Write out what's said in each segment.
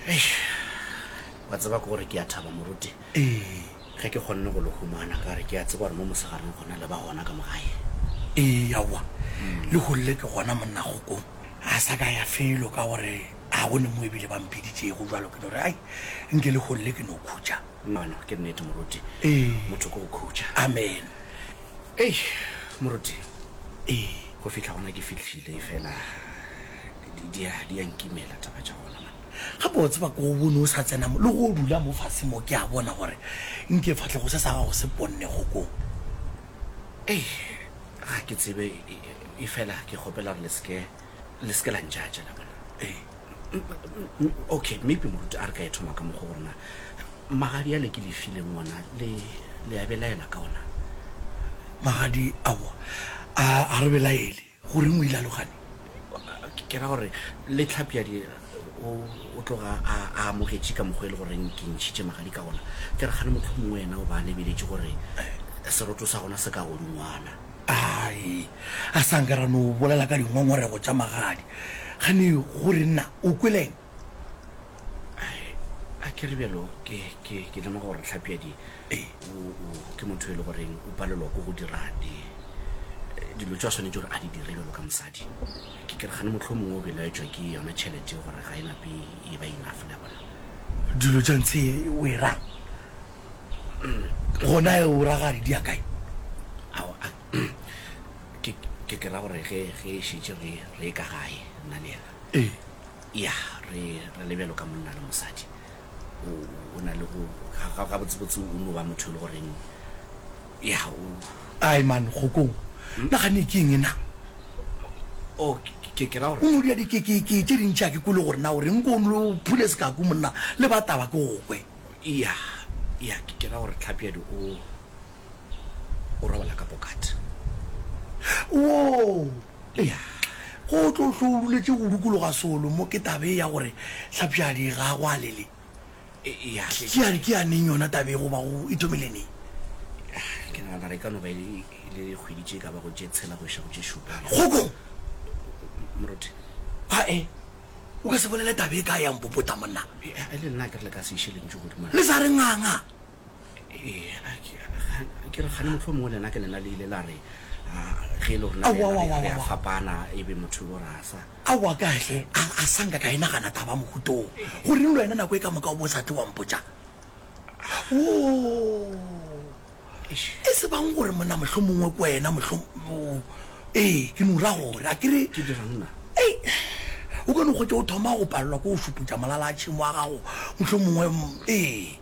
Eish, wa tseba ke gore ke a thaba moruti Ee, ge ke kgonne go le humana ka re ke a tseba gore mo mosegareng gona le ba gona ka mo gae. ee, aowa, le golle ke gona monna kgokong. A sa ka ya felo ka gore ga go ne mo ebile ba mphiditšego jalo ke no re, Ai, nke le golle ke no khutša. Nono, ke nnete moruti, Ee, motho ke go khutša. amen. Eish, moruti, Ee. go fihla gona ke fihlile efela. Di, di, a, di a nkimela taba tša gona, man. Gape wa tseba, ko o bone o sa tsena mo, le go o dula mo fase mo, ke a bona gore nke fatlego se sa gago se ponnego ko. Ei, ga ke tsebe, e, e, efela ke kgopela gore le se ke, le se ke la ntšatša, la bona. Ee. M, m, m, okay, maybe moruti a re ka e thoma ka mokgwa gore na magadi ale ke le fileng ona, le, le a belaela ka ona? Magadi, aowa, a, a re belaele. Go reng o ile a logane? Ke ra gore le Tlhapjadi o tloga a amogetše ka mokgwa e le goreng ke ntšhitše magadi ka gona. Ke re gane motlho mongwe wena o ba a lebeletše gore seroto sa gona se ka go dingwana. Ae, a sa nka ra no bolela ka dingongorego tša magadi. Gane gore nna o kweleng? a ke re bjalo ke ke ke lema gore tlhapiadi ee. ke motho e le goreng o palelwa ko go dira di eh, dilo tse a tshwanetse gore a di dire bjalo ka mosadi ke ke re gane motlho mongwe o belaetswa ke yona tšhelete gore ga e nape e ba inafe la bona dilo tsa ntse o e rang mm, gona e o ragadi di ya kae ke ke ra gore ge ge e šetse re re ka gae nna le yena Ee. Ya, re, re le bjalo ka monna le mosadi. O, o na le go, ga, ga, gabotsebotse o no ba motho e le goreng, ya, o, Ai, man, kgokong. Nagane ke eng na? O, ke, ke, ke ra gore. O no dira di, ke, ke, ke tše dintši ga ke kwele gore na o reng, ko o no phule sekaku monna, le ba taba ke go kwe. Ya, ya, ke, ke ra gore Tlhapjadi o. o robala ka pokat. Wo! Eya, go tlo hlo o duletše go dukologa solo mo ke tabe ya gore hlapšadi ga go a lele. Eya, hle. Ke a re ke ya neng yona tabe go ba go ithomile neng? Ke nagana re ka no ba e le kgwedi tše ka ba go tše tshela go iša go tše šupa. Kgoko! Moruti. Ae, o ka se bolele tabe e ka ya mpopota monna. E le nna ke re le ka se iše lentšu godimo. Le sa re nganga. ke re gane motlho mongwe lena ke lena le ile la re ge e le rona re a fapana e be motho bo rasa awa kahle a sanka ka e nagana taba mogutong gore le wena nako e ka moka o bo sa tle wampotsa e se bang gore mona motlho mongwe ko wena motlho ee ke nura gore a kere ke dirangna o kone go tse o thoma go palelwa ko o šuputsa molala a tšhimo wa gago motlho mongwe ee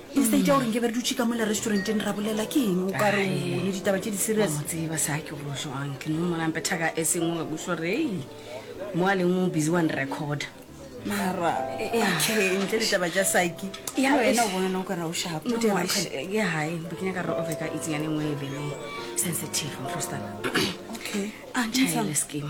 instead ya gore nke be re dutše ka mola restauranteng ra bolela ke eng o ka re o bone ditaba tše di serious o tseba sa ke go jwang ke no mona mpetha ka e sengwe ga kutlwa gore ei mo a leng o busy one record mara okay ntle ditaba tša saki ya wena o bona no ka ra o shapo mo teng ke hae bo ke nyaka re over ka itseng ya le nngwe e bele sensitive mhlostana okay a ntshile skin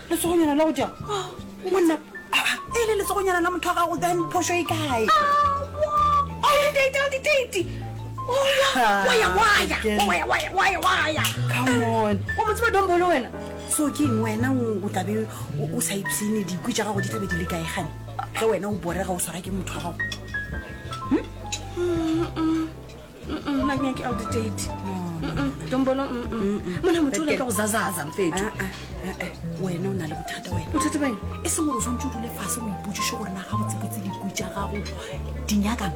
letsogonyana la go jang monna e le letsogonyana la motho wa gago then phoso e kae o mo tseba dombolo wena so ke eng wena o tlabe o sa ipsene dikwi tša gago di tlabe di le kae gane ge wena o borega o swara ke motho wa gago mona motho o leka go zazaza mfetho ah, ah, ah, wena o na le bothata wena bothata bang e seng gore o tshwanetse o dule fase o ipotsiše gore na ga botsebotse diku tša gago di nyakang